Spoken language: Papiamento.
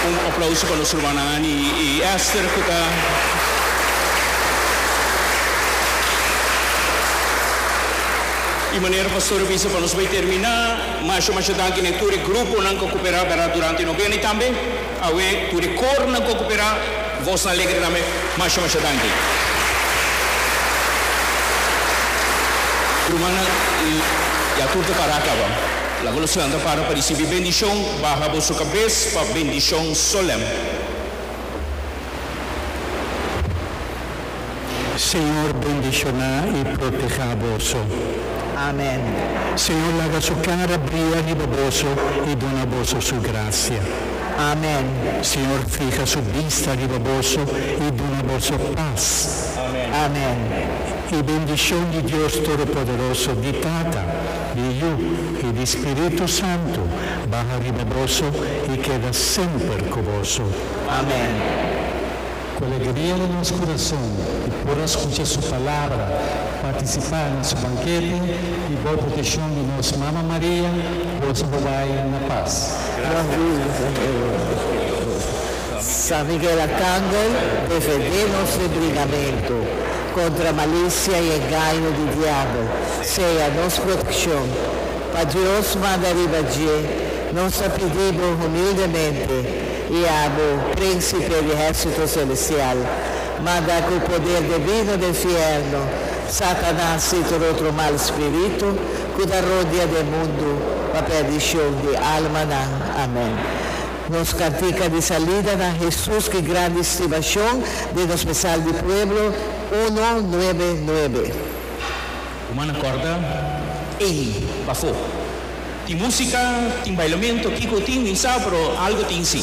Un aplauso pa nos rumannan Anny y Esther cu ta Y manera Pastor a bisa pa nos bay termina, masha masha danki na e tur e gruponan cu a copera verdad durante e novena y tambe awe tur e cornan cu a copera Voznan Alegre tambe masha masha danki. Rumannan y ya tur ta para caba. Laga los planta para pa risibi bendishon, baha boso kabes pa bendishon solèm. Señor bendishoná i protehá boso. Amèn. Señor laga Su kara bria riba boso i duna boso Su grasia. Amèn. Señor fiha Su bista riba boso i duna boso pas. Amèn. Amèn. E bendishon di Dios Todopoderoso, di Tata. di Yu i di Spiritu Santu baha riba boso i keda semper ku boso. Amen. Ku alegria na nos kurason e por a skucha su palabra, partisipá na su bankete i bou proteshon di nos Mama Maria, boso bo bai na pas. San Miguel Arcangel, defendé nos ri brigamentu. Kontra malicia y engaño di diabel sea nos proteccion. Pa Dios manda riba dje, nos ta pidi bo humildemente y abo, Principe di Hersito Celestial, manda cu poder devino den fierno Satanas y tur otro mal spirito cu ta rodea den mundo pa perdicion di almanan. Amen. Nos cartica di salida na Hesus ki grandi stibacion den nos mesal di pueblo, uno, nuebe, nuebe. Kuma na corda ey pafó? Tin musica, tin bailamento, kico tin, ni sa, pero algo tin si.